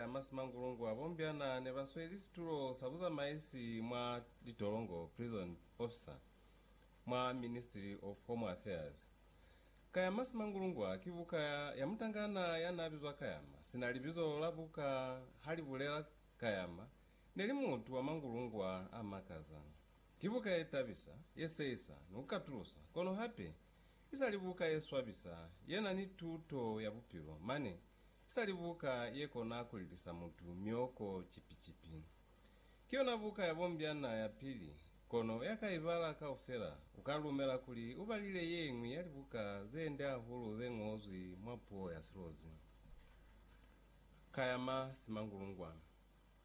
A masimangulungu a bombyana ne ba sweli situlo sa buzamaisi mwa litolongo, prison officer, mwa Ministry of Home Affairs. Ka ya masimangulungu a ki buka ya mutangana ya n'a bizwa Kayama, sina libizo la buka ha li bulela Kayama ne li mutu wa mangulungu a a makaza. Ki buka ye tabisa, ye seisa, ni ku katulusa, kono hape i sa li buka ye swabisa ye na ni tuto ya bupilo mane Sali buka ye kona ku lilisa mutu mioko cipi-cipi. Ki yona buka ya bombyana ya pili, kono ya ka i bala kaufela u ka lumela kuli u balile ye ñwi ya libuka ze nde hahulu ze ñozwi mwa puo ya silozi. Ka ya ma Simangulungwa,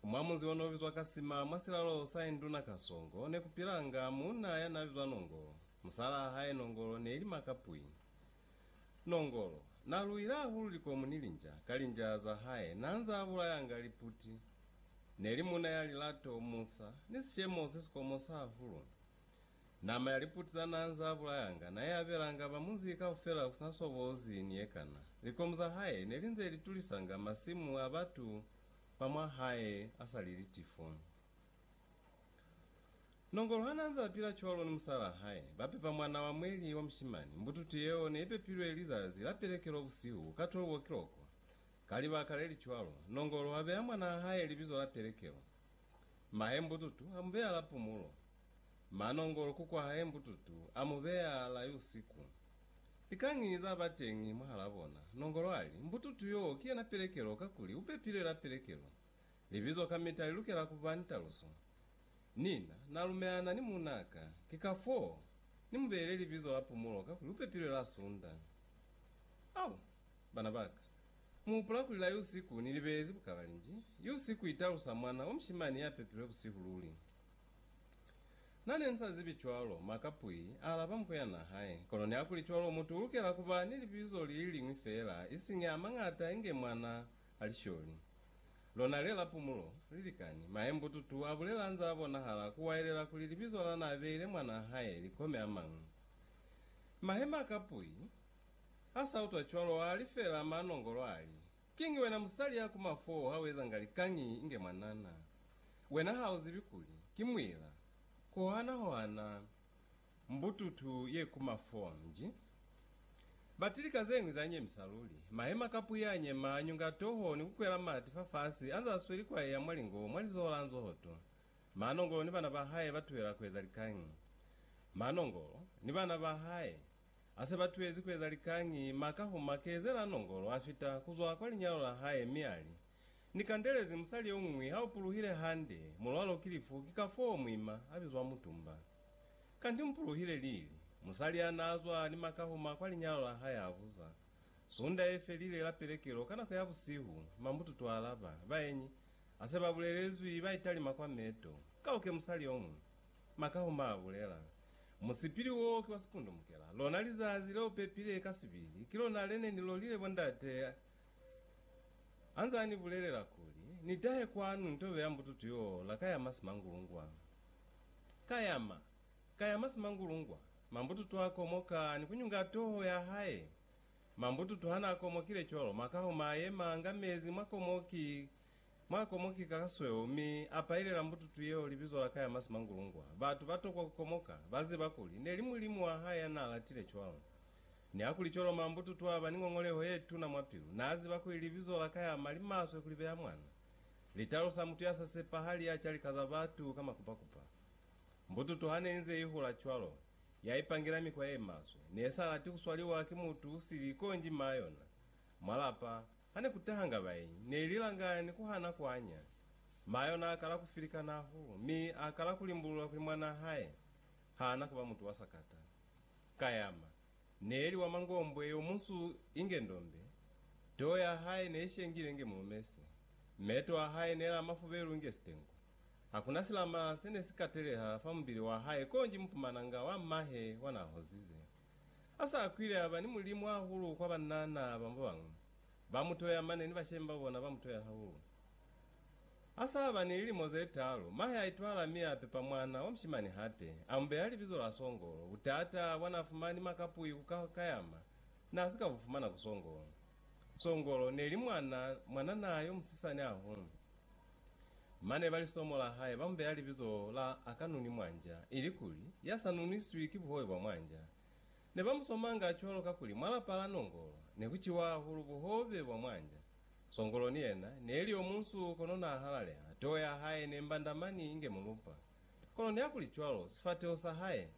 mwa munzi o n'o bizwa ka Sima mwa silalo sa induna Kasongo, ne ku pilanga muuna ya n'a bizwa Nongolo. Musalaa hae Nongolo ne li Makapwi. Nongolo. Na luile hahulu likomu ni linja ka linja za hae, na nza a bulayanga liputi. Ne li muna ya lilato, musa, ni sishemo se si komosa hahulu. Nama ya liputi za na nza a bulayanga na i abelanga ba munzi kaufela ku si na sobozi ni ye kana. Likomu za hae ne li nze li tulisanga masimu a batu ba mwa hae a sa li litifo. Nongolo hanaanze apila cwalo ni musalaa hae, bapepa mwana wa mweli wa mushimani. Mbututu yeo neipepilwe lizazi la pelekelo busihu ka 12 o'clock. Ka libaka lelicwalo, Nongolo abeya mwanaa hae libizo la pelekelo. Mahae Mbututu amubeya la pumulo. Ma Nongolo kukwa hae Mbututu amubeya la yusiku. Likañi zabateñi mwahalaa bona, Nongolo ali, Mbututu yoo kiyena pelekelo kakuli upepilwe la pelekelo. Libizo kamita li lukela ku ba ni taluso. Nina na lumelana ni muuna ka, ki kafoo ni mu beile libizo la Pumulo kakuli u pepilwe la Sunda. Au, bana ba ka, mu hupula kuli la Yusiku ni li beezi bukalalinji? Yusiku i talusa mwana wa mushimani ya pepilwe busihu luli. Na ne nsa zibi cwalo, Maka Pui a alaba muko ya na hae. Kono nihakulicwalo, mutu u lukela ku ba ni libizo li li liñwi feela, isiñi a mañata inge mwana Alisholi, lona le la pumulo, li likani. Maye mbututu a bulela nza bonahala ku waelela kuli libizo la na beile mwanaa hae li kome a mañwi. Mahe ma kapui, a sa utwa cwalo, a li feela ma nongolo a li, Kiñi wena musali ya ku mafu oo ha u ezanga likañi inge mwanana? Wena ha u zibi kuli ki muila? Ku hohana hohana Mbututu ye ku mafonji. Bati lika zeñwi za nyemisa luli. Mahema ka puya a nyema, a nyunga toho ni ku kwela mati fa fasi, anze a sweli kwa eya mwa lingo, mwa lizoho la nzohoto. Manongolo ni bana ba hae ba tuhela kueza likañi? Manongolo ni bana ba hae a se ba tuhezi kueza likañi, ma ka huma kezela nongolo a fita kuzwa kwa linyalo la hae mi ali, Ni kandelezi musali yomuñwi ha o puluhile hande, mulwalo ki lifu, ki kafoo muima a bizwa mutumba. Kanti mupuluhile lili? Musali ya n'a zwa ni makahuma kwa linyalo la hae a buza. Sunda ye felile la pelekelo ka nako ya busihu, mambututu a alaba, Baenyi, a se ba bulelezwi, ba italima kwa meto. Ka uke musali yo muñwi. Makahuma a bulela, Musipili wo ki wa sipundumukela. Lona lizazi le u pepile ka sibili, ki lona le ne ni lolile bo ndate a nze a ni bulelela kuli, Ni tahe kwanu ni tobe ya mbututu yo la ka ya masi mangulungwa. Ka yama, ka yama simangulungwa. Mambututu a komoka ni kunyunga toho ya hae. Mambututu hana komokile cwalo, makaho ma yema nga mezi mwa komoki, mwa komoki ka kasweo, mi a pailela mbututu yeo libizo la ka yama simangulungwa. Batu ba tokwa ku komoka, ba ziba kuli, neli Mulimu wa hae ya n'a latile cwalo. Nihakuli cwalo, mambututu aba ni ngongoleho ye tuna mwa pilu. N'a ziba kuli libizo la ka yama li maswe ku libeya mwana. Li talusa mutu ya sa sepahali ya calika za batu ka makupakupa. Mbututu ha ne inze i hula cwalo, ya ipangela mikwa ye maswe. Ne sa lati ku swaliwa ki mutu u sili konji maa yona. Mwa lapa, ha ne ku tahanga baenyi, ne i lilanga ni ku hana ku anya. Maa yona a kala ku filikana huu, mi a kala ku limbulula kuli mwanaa hae ha na ku ba mutu wa sakata. Kayama, Neeli wa mangombwe yo munsu inge ndombe, too ya hae neishengile inge mulumese, meto a hae nela mafubelu inge sitengu. Hakuna silama sene si kateleha fa mubili wa hae konji mupumananga wa mahe wa na hozize. Asa akwile aba ni mulimu hahulu kwa banna naaba babañwi, ba mutoya mane ni bashemi babona ba mutoya hahulu. Ha sa ba ni lilimo ze taalu, mahe a itwala mi a pepa mwana wa mushimani hape. A mu beha libizo la Songolo. Butata bwa n'a fumani makapui ku ka kayama n'a si ka bu fumana ku Songolo. Songolo ne li mwana mwanana yo musisani hahulu. Mane ba lisomo la hae ba mu beha libizo la Akanunimwanja, ilikuli, Ya sa nuniswi ki buhobe bwa mwanja. Ne ba mu somanga cwalo kakuli mwa lapa la nongolo ne ku ciwa hahulu buhobe bwa mwanja. Songolo ni yena ne li yo munsu kono n'a halaleha, toho ya hae ne mbanda mani inge mulupa. Kono nihakuli cwalo, sifateho sa hae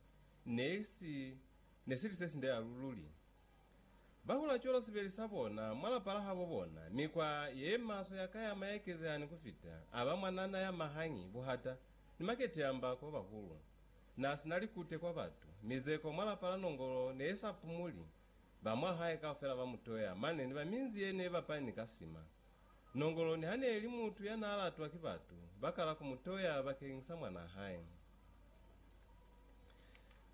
ne si ne si li se sinde halu luli. Ba hula cwalo sibeli sa bona mwa lapa la habo bona. Mikwa ye maswe ya kayama ya ekezeha ni ku fita, a ba mwanana ya mahangi, buhata, ni makete ya mba ku ba bahulu. Na si na likute kwa batu. Mizeko mwa lapa la Nongolo ne i sa pumuli. Ba mwa hae kaufela ba mu toya, mane ni ba minzi ye ne ba pani ka sima. Nongolo niha ne li mutu ya n'a latwa ki batu, ba kala ku mu toya bakeñi sa mwan'a hae.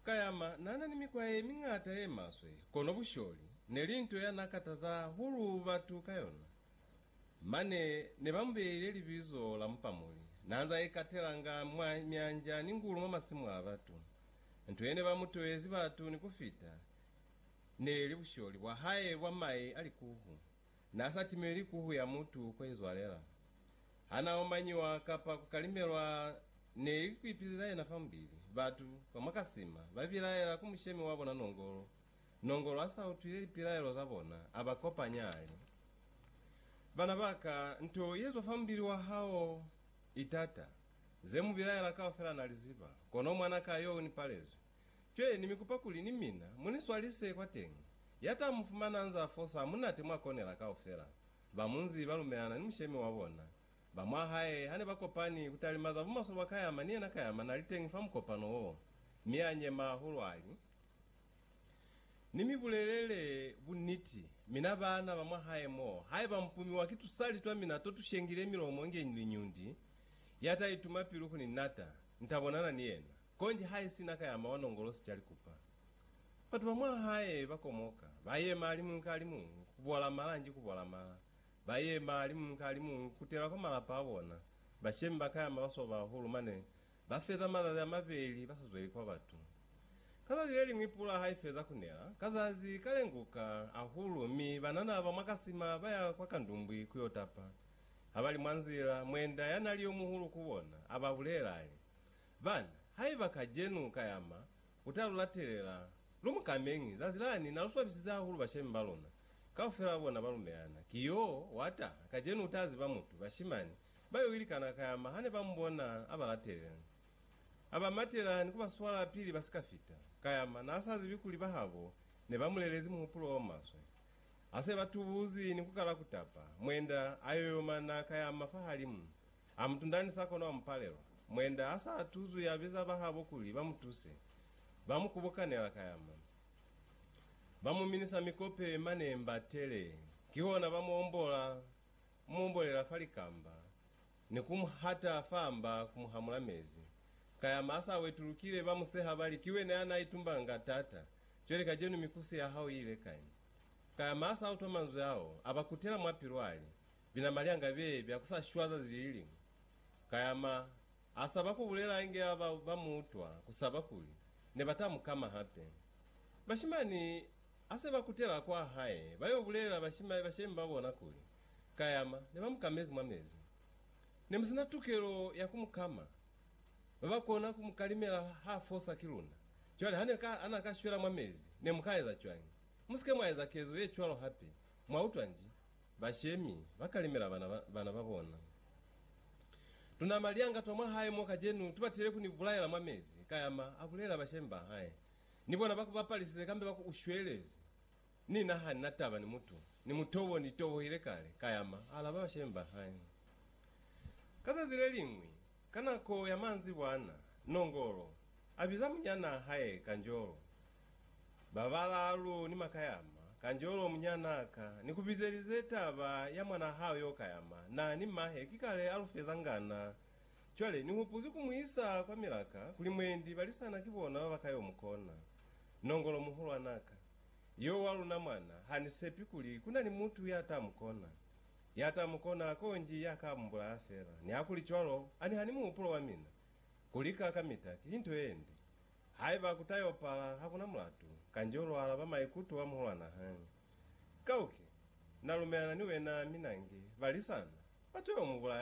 Kayama n'a na ni mikwa ye miñata ye maswe, kono busholi ne li nto ya n'a kataza hahulu batu ka yona. Mane ne ba mu beile libizo la Mupamuli. N'a nz'a ikatelanga mwa myanja ni ngulu mwa masimu a batu. Nto ye ne ba mu toezi batu ni ku fita ne li busholi bwa hae bwa mai a likuhu. N'a sa timelwi kuhu ya mutu k'o izwalela. Ha n'a omanyiwa kapa ku kalimelwa ne li ku ipileza yena fa mubili. Batu ba mwa Kasima ba bilaela ku mushemi wa bona nongolo Nongolo ha sa utwile lipilaelo za bona, a ba kopanya, a li, Bana ba ka, nto ye zwa fa mubili wa hao i tata. Ze mu bilaela kaufela na li ziba, kono mwana ka yo u ni palezwi. Cwe, ni mi kupa kuli ni mina mu ni swalise kwateñi. Ya ta mu fumana anz'a fosa ha munate mwa konela kaufela. Ba munzi ba lumelana ni mushemi wa bona. Ba mwa hae ha ne ba kopani ku talima za bumaswe bwa Kayama, ni yena Kayama na li teñi fa mukopano wo, mi a nyema hahulu, a li, Ni mi bulelele buniti, mina baana ba mwa hae mo, haiba mpumiwa ki tusali twa mina to tu shengile milomo inge ni liñundi, ya ta ituma pilu ku ni nata, ni ta bonana ni yena. Konji ha i sina ka ya mawa nongolo si ca likupa. Batu ba mwa hae ba komoka, ba yema alimuñwi ka alimuñwi, ku bola mala nji ku bola mala. Ba yema alimuñwi ka alimuñwi ku kutela kwa malapa a bona. Bashemi ba ka yama ba swaba hahulu, mane Ba feza mazazi a mabeli ba sa zweli kwa batu. Ka zazi le liñwi pula ha i feza ku nela, ka zazi ka lenguka hahulu mi banana ba mwa kasima ba ya kwa kandumbwi ku yo tapa. Ha ba li mwa nzila, mwenda ya nali yo muhulu ku bona a ba bulela a li, Bana, haiba kajenu ka yama u ta lu latelela, lu mu kameñi, zazi lani na lu swabisize hahulu bashemi ba luna. Kaufela bona ba lumelana. Ki yo wa taha, kajenu u ta ziba mutu, bashimani, Ba yo ilikana kayama hane ba mubona aba latelela. Aba matela ni kuba swala pili ba sika fita. Kayama na sa zibi kuli bahabo ne ba mulelezi muhupulo o maswe. Ase ba tubuzi ni kukala kutapa, mwenda a yoyoma na kayama fahalimu. A mutunda ni sa kono a mupalelwa. Mwenda a sa tuzwi a biza bahabo kuli ba mutuse. Ba mu kubukanela kayama. Ba mu minisa mikope mane mba tele. Kihona ba mu ombola. Mu bolela fa likamba, ni ku mu hata fa mba ku mu hamula mezi. Ka ya masa a wetulukile, ba mu seha ba li, Ki wena ya n'a itumbanga nga t'ata, cwale kacenu mikusi ya hao i ile kai? Ka ya masa a utwa manzwi ao, a ba kutela mwa pilu a li, Bina malyanga be bya ku sa shwa zazi li li liñwi. Ka ya ma a saba ku bulela inge ba ba mu utwa ku saba kuli ne ba ta mu kama hape. Bashimani Ha se ba kutela kwa hae, ba yo bulelela bashimai ba shemi ba bona kuli, Kayama ne ba mu kamezi mwa mezi. Ne mu si na tukelo ya ku mu kama. Ba ba kona ku mu kalimela ha fosa ki luna. Cwale ha ne ka, ha na ka shwela mwa mezi, ne mu ka eza cwañi? Mu si ke mwa eza kezo ye cwalo hape. Mwa utwa nji? Bashemi ba kalimela bana, bana ba bona. Tunama lianga twa mwa hae mo kajenu, tu batile ku ni bulaela mwa mezi, Kayama a bulelela bashemi ba hae. Ni bona ba ku bapalisize kambe ba ku u shwelezi. Ni na ha ni na taba ni mutu, ni muto wo ni tobohile kale, ka yama, a alaba bashemi ba hae. Ka zazi le liñwi, ka nako ya manzibwana, Nongolo a biza munyanaa hae Kanjolo. Ba balaalu ni ma ka yama, Kanjolo, munyanaa ka ni ku bizelize taba ya mwanaa hao yo ka yama, na ni mahe ki kale a lu feza ngana, Cwale, Ni hupuzi ku mu isa kwa milaka, kuli mwendi balisana ki bona ba ba ka yo mu kona. Nongolo muhulwana ka. Yo wa luna mwana, ha ni sepi kuli ku na ni mutu ya ta mu kona. Ya ta mu kona, konji ya ka mu bulaya fela. Nihakuli cwalo, a ni hani muhupulo wa mina? Ku lika kamita, ki nto ye nde. Haiba ku ta yo pala, ha ku na mulatu. Kanjeo lwa alaba maikuto a muhulwana hañi. Kauke, Na lumelana ni wena, mi nange, balisana, ba to yo mu bulaya.